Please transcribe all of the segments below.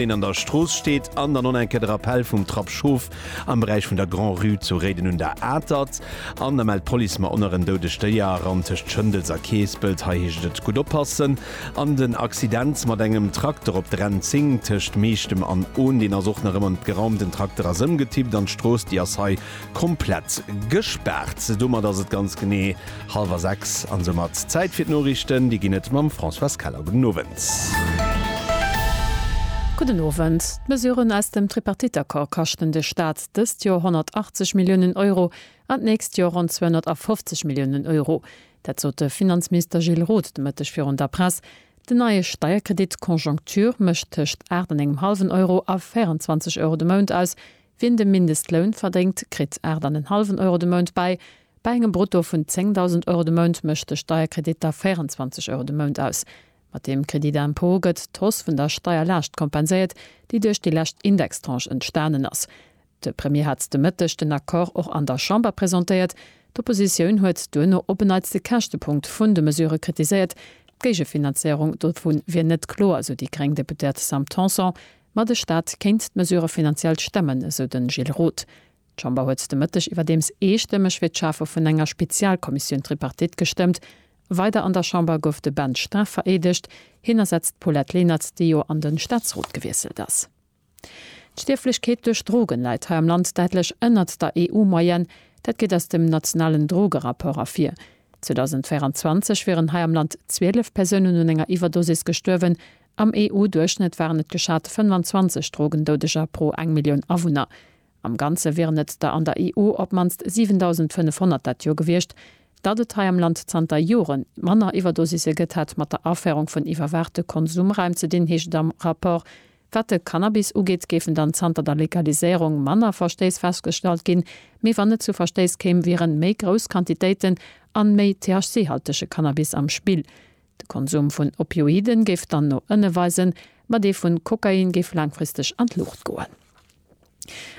deen an der Strooss steet, an dann en Kéier de Rappell vum Trapp Schof am Beräich vun der Grand-Rue zu Réiden un der Atert. An da mellt d'Police mer onerren doudeg Déier eran tëscht Schëndels a Keespelt. Hei heescht et gutt oppassen. An den Accident mat engem Trakter op der N10 tëscht Meechtem an Ohn, deen ass och nach ëmmer net geraumt. Den Trakter ass ëmgetippt an d'Strooss, déi ass hei komplett gespaart. Domat ass et ganz genee Hallwer 6 an soumat Zäit fir d'Noriichten. Déi ginn et mam Françoise Keller. Gudden Owend. Gudden Owend. D'Mesuren aus dem Tripartite-Accord kaschten de Staat dëst Joer 180 Milliounen Euro an d'nächst Joer ronn 250 Milliounen Euro. Dat sot de Finanzminister Gilles Roth de Mëtteg virun der Press. Den neie Steierkredit Conjoncture mécht tëscht 8 an engem hallwen Euro a 24 Euro de Mount aus. Wien de Mindestloun verdéngt, kritt 8 an en hallwen Euro de Mount bäi. Bei engem Brutto vun 10.000 Euro de Mount mécht de Steierkredit da 24 Euro de Mount aus. Mat deem Crédit d'impôt gëtt d'Hausse vun der Steierlaascht kompenséiert, déi duerch déi lescht Indextranche entstanen ass. De Premier hat de Mëtteg den Accord och an der Chamber presentéiert. D'Oppositioun huet duerno op en Neits de Käschtepunkt vun de Mesurë kritiséiert. D'Géigefinanzéierung dovu wier net kloer, sou déi gréng Deputéiert Sam Tanson. Ma de Staat kéint d'Mesurë finanziell stemmen, esou de Gilles Roth. D'Chamber huet de Mëtteg iwwerdeems eestëmmeg fir d'Schafe vun enger Spezialkommissioun Tripartite gestëmmt. Weider an der Chamber gouf de Ben Stra vereedegt. Hien ersetzt d'Paulette Lenert, déi jo an de Staatsrot gewiesselt ass. D'Stierflechkeet duerch Drogen läit hei am Land däitlech ënnert der EU-Moyenne. Dat geet aus dem nationalen Drogerapport ervir. 2024 wieren hei am Land 12 Persounen un enger Iwwerdosis gestuerwen. Am EU-Duerchschnëtt waren et geschat 25 Drogendoudeger pro eng Millioun Awunner. Am Ganze wieren et der an der EU op d'mannst 7.500 dat Joer gewiescht. Datt et hei am Land zanter Joren manner Iwwerdosisse gëtt, hätt mat der Aféierung vun iwwerwaachte Konsumraim ze dinn, heescht et am Rapport. Wat de Cannabis ugeet, géifen dann zanter der Legaliséierung manner Verstéiss festgestallt ginn. Mee wann et zu Verstéiss kéim, wieren méi grouss Quantitéiten an méi THC-haltege Cannabis am Spill. De Konsum vun Opioiden géif dann no ënne weisen, ma dee vun Kokain géif laangfristeg an d'Luucht goen.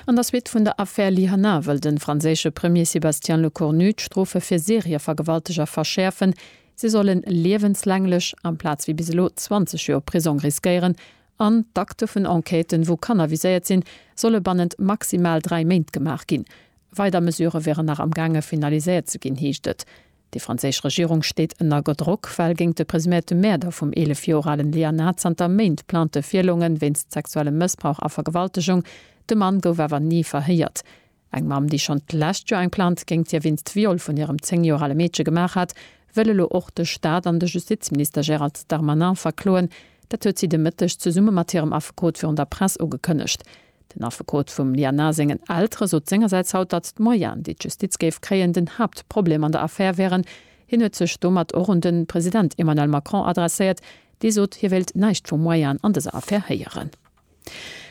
An der Suite vun der Affär Lihana wëll de franséische Premier Sébastien Lecornu d'Strofe fir Serievergewalteger verschäerfen, se solle liewenslänglech, amplaz wéi bis elo 20 Joer Prisong riskéieren, an d'Akte vun Enquêten, wou Kanner viséiert sinn, solle bannent maximal dräi Méint gemaach ginn. Weider Mesurë wieren nach amgaange finaliséiert ze ginn, heescht et. Déi franséisch Regierung steet ënner Gedrock, well géint de presuméierte Mäerder vum 11 Joer alen Lianah zanter Méint Plaintë virloungen, wéinst sexuellem Mëssbrauch a Vergewaltegung. De Mann gouf awer ni verhéiert. Eng Mamm, déi schonn d'lescht Joer eng Plainte géint hie wéinst Viol vun hirem 10 Joer ale Meedche gemaach hat, wëll elo och de Staat an de Justizminister Gérald Darmanin verkloen. Dat huet si de Mëtteg zesumme mat hirem Affekot virun der Press ugekënnegt. Den Affekot vum Lianah sengen Eltere sot sengersäits haut, datt d'Moyenen, déi d'Justiz géif kréien, den Haaptproblem an der Affär wären. Hien huet sech domat och un de President Emmanuel Macron adresséiert, dee sot, hie wéilt näischt vu Moyenen an dëser Affär héieren.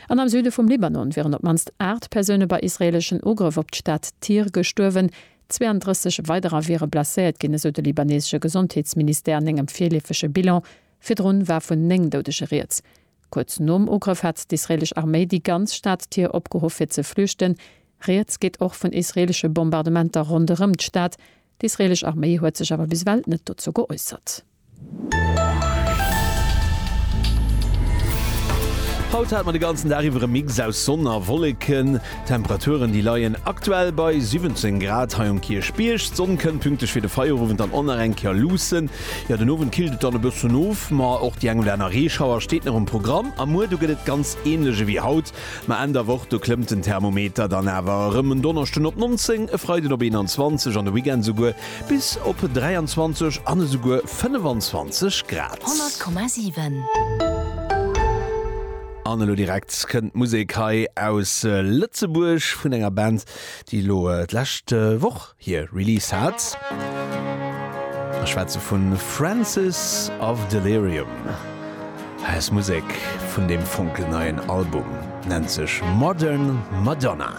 An am Süde vum Libanon wieren op d'mannst 8 Persoune bei israeeleschen Ugrëff op d'Stad Tyr gestuerwen. 32 weiderer wiere blesséiert ginn, esou de libaneesesche Gesondheetsministère an engem virleefege Bilan. Virdrun war vun 9 Doudege rieds. Kuerz nom Ugrëff hat d'israeelesch Arméi déi ganz Stad Tyr opgeruff fir ze flüchten. Rieds geet och vun israeelesche Bombardementer ronderëm d'Stad. D'israeelesch Arméi huet sech awer bis ewell net dozou geäussert. Haut hat mer de ganzen Dag iwwer e Mix aus Sonn a Wolleken. D'Temperaturen déi leien aktuell bei 17 Grad hei um Kierchbierg. D'Sonn kënnt pünktlech fir de Feierowend dann och nach eng Kéier luussen. Jo, den Owend killt et dann e bëssen of, ma och déi eng oder aner Reeschauer steet nach um Programm. A muer, do gëtt et ganz änlech ewéi haut, ma Enn der Woch, do klëmmt den Thermometer dann awer erëm, en Donneschden op 19, e Freiden op 21 an de Weekend esouguer bis op 23 an esouguer 25 Grad. 100,7. An elo direkt kënnt d'Musek hei aus Lëtzebuerg vun enger Band, déi elo d'lescht Woch hir Release hat. Ech schwätze vun Francis of Delirium. Hei ass Musek vun deem fonkelneien Album, nennt sech Modern Madonna.